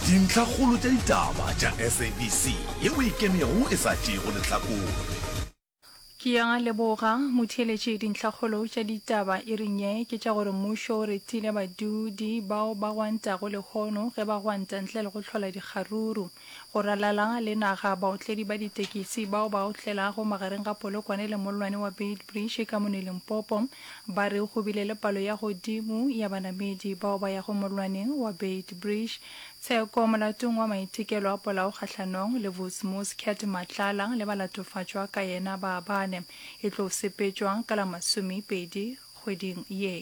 Dintlhakgolo tša ditaba tša SABC ye o e kenego e sa tšeego lehlakore. Ke a leboga, motheeletši. Dintlhakgolo tša ditaba iring ye ke tša gore mmušo o retile badudi bao ba gwantago lehono ge ba gwanta ntle le go hlola dikgaruru. Go ralala le naga, baotledi ba ditekisi bao ba otlelago magareng ga Polokwane le mollwane wa Beitbridge ka mone Limpopo ba re go bile le palo ya godimo ya banamedi bao ba yago mollwaneng wa Beitbridge. Tsheko molatong wa maitekelo a polao kgahlanong le Vusi Muscat Matlala le balatofatšwa ka yena ba bane e tlo sepetšwa ka la masomepedi kgweding ye.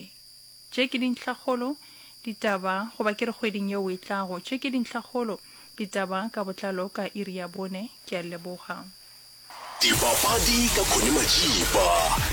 Tše ke dintlhakgolo, Ditaba, goba ke re kgweding yeo e tlago. Tše ke dintlhakgolo, Ditaba ka botlalo ka iri ya bone. Ke a leboga. Dipapadi ka Connie Matšipa,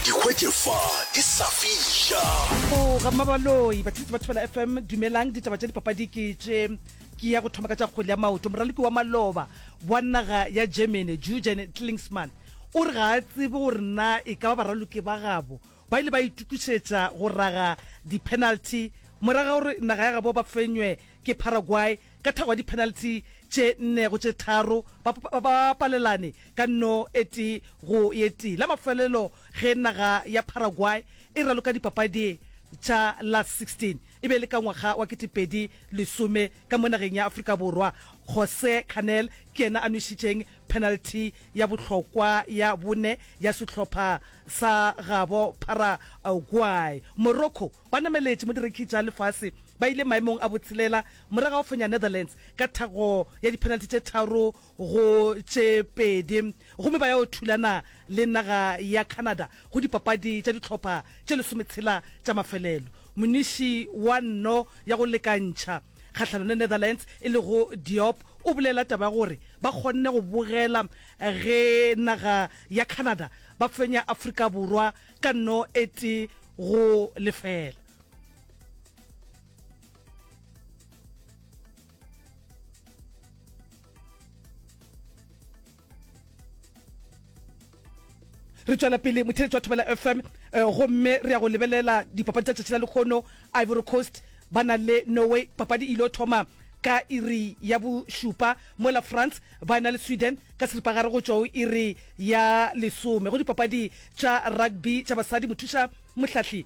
di hwetše fa di sa fiša. Go ga Mabaloi, Batlisi ba Thobela FM, dumelang, ditaba tša dipapadi ke tše. Ke ya go thoma ka tša kgwele ya maoto. Moraloki wa maloba wa naga ya Germany, Jurgen Klinsmann, o re ga a tsebe gore na e ka ba baraloki ba gabo Ba ile ba itokišetša go raga diphenalthi morago ga gore naga ya gabo ba fenywe ke Paraguay ka thago ya diphenalthi tše nne go tše tharo, ba ba palelane ka nno e tee go ye tee. La mafelelo ge naga ya Paraguay e raloka dipapadi tša Last 16 e be e le ka ngwaga wa kete pedi lesome ka mo nageng ya Afrika Borwa. Jose Canel ke yena a nwešitšeng Penalty ya bohlokwa ya bone ya sehlopha sa gabo Paraguay. Morocco ba nameletše mo direkhi tša lefase, ba ile maemong a botshelela morago ga go fenya Netherlands ka thakgo ya diphenalty tše tharo go tše pedi gomme ba ya go thulana le naga ya Canada go dipapadi tša dihlopha tše lesometshela tša mafelelo. Moniši wa nno ya go lekantšha, kgahlano le Netherlands e lego Diop o bolela taba ya gore ba kgonne go bogela ge naga ya Canada ba fenya Afrika Borwa ka nno e tee go lefela. re tswela pele motheletsi wa thobela fm um eh, gomme re ya go lebelela dipapadi tsa tšatši la lekgono ivory coast ba na le norway papadi e ile thoma ka iri ya bošupa mola france ba na le sweden ka seripagare go tšwa o iri ya lesome go dipapadi tša rugby tša basadi mothuša mohlahli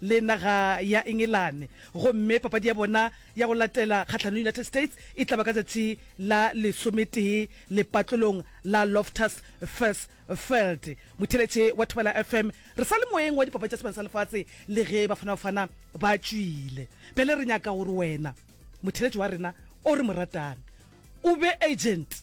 le naga ya Engelane gomme papadi ya bona ya go latela kgahlanong le United States e tla ba ka tšatši la lesometee lepatlelong la Loftus Versfeld. Motheeletše wa Thobela FM, Re sa le moyeng wa Dipapadi tša Sebjana sa Lefatshe le ge Bafana Bafana ba tšwile. Bjale re nyaka gore wena, motheeletši wa rena o re mo ratang, o be agent.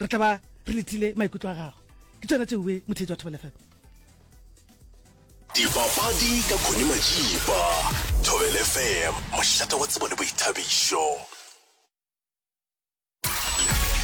re tla ba re letile maikutlo a gago ke tsona tse uwe motheetsi wa thobelefm dipapadi ka khone majipa thobelefm mošate wa tsebo le boithabišo